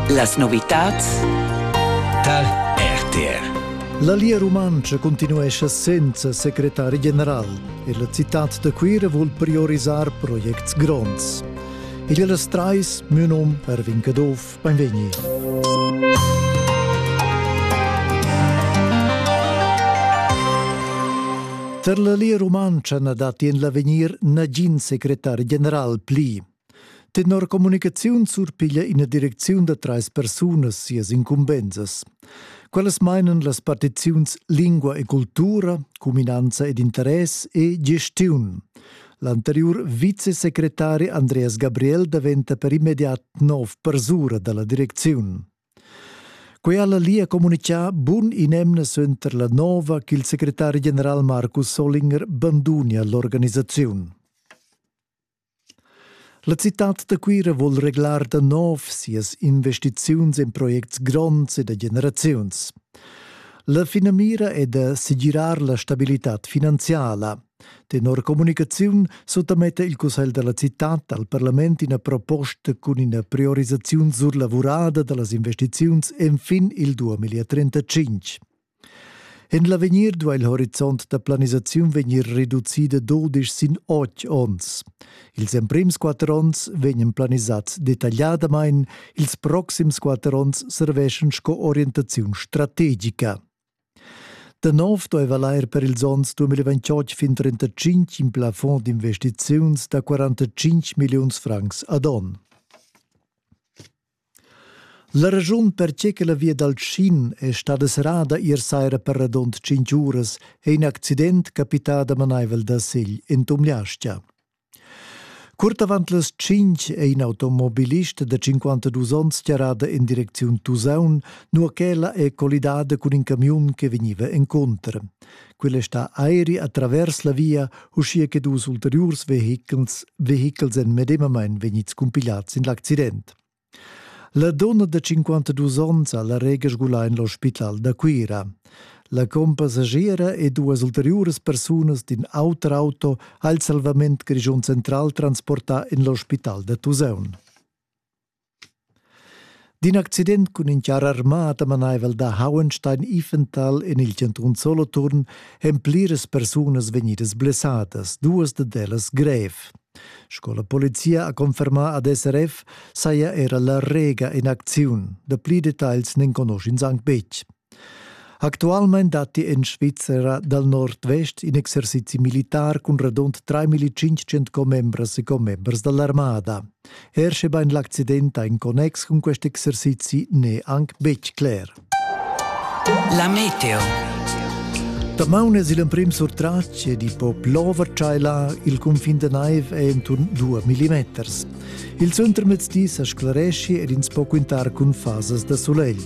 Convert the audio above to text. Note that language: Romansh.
Las novitads tar RTR La Lia Rumantscha continuescha senza secretari general e la citad da Cuira vul priorisar projects gronds. Igl las trais, mio nom Erwin Caduff, benvegni. Per la Lia Rumantscha na datti en l'avegnir nagin secretari general pli. Tenor communicaziun surpiglia ina direcziun da trais persunas sias incumbensas. Quellas mainan las partiziuns lingua e cultura, cuminanza ed interess e gestiun. L'anteriur vicesecretari Andreas Gabriel daventa per immediat nov persura dalla direcziun. Quella lia comunicà bun in emna suenter la nova ch'il secretari general Markus Solinger bandunia l'organisaziun. La citad da Cuira vul reglar da nov sias investiziuns en projects gronds e da generaziuns. La finamira è da segirar la stabilitad finanziala. Tenor comunicaziun suttametta il Cussegl della città al Parlament ina proposta cun ina priorisaziun surlavurada da las investiziuns enfin il 2035. En l'avegnir duai il horizont da planisaziun vegnir reducida dudisch sin otg onns. Ils emprims quatter onns vegnan planisads detagliadamain, ils proxims quatter onns serveschan sco orientaziun strategica. Da nov dueva lair per ils onns 2028 fin 35 in plafond d'investiziuns da 45 milliuns francs ad onn. La raschun perche che la via dal Tschin è stada serrada ier saira per radund tschintg uras è in accident capità damanaivel da Segl en Tumliastia. Curt avant las tschintg è in automobilist da 52 onns tiarada en direcziun Tusaun, nua ch'ella è collidada cun in camiun che vegniva encontro. Quella è stà airi a travers la via, uschia che dus ulteriurs vehichels, vehichels èn medemamain vegnids cumpigliads in l'accident. La donna da 52 onns ha la rega sgulà en l'ospital da Cuira. La compassiera e duas ulteriuras persunas d'in auter auto ha il salvament Grischun Central transportà en l'ospital da Tusaun. D'in accident cun in char armà damanaivel da Hauenstein Iffental en il chantun Soloturn èn pliras persunas vegnidas blessadas, duas dad ellas grev. Sco la polizia ha confermà ad SRF saja era la Rega in acziun. Dapli detagls n'enconusch'ins anc betg. Actualmein datti en Svizzera dal nordvest in exercizi militar cun radund 3500 commembras e commembers dall'armada. Er sche bein l'accident ha in connex cun quest exercizi n'è anc betg cler. La meteo. Damaun es il emprim surtratg di po plover tschailar il cunfin da naiv è intorn 2 mm. Il centrmezdi sa sclaresci ed ins po quintar cun fasas da sulegl.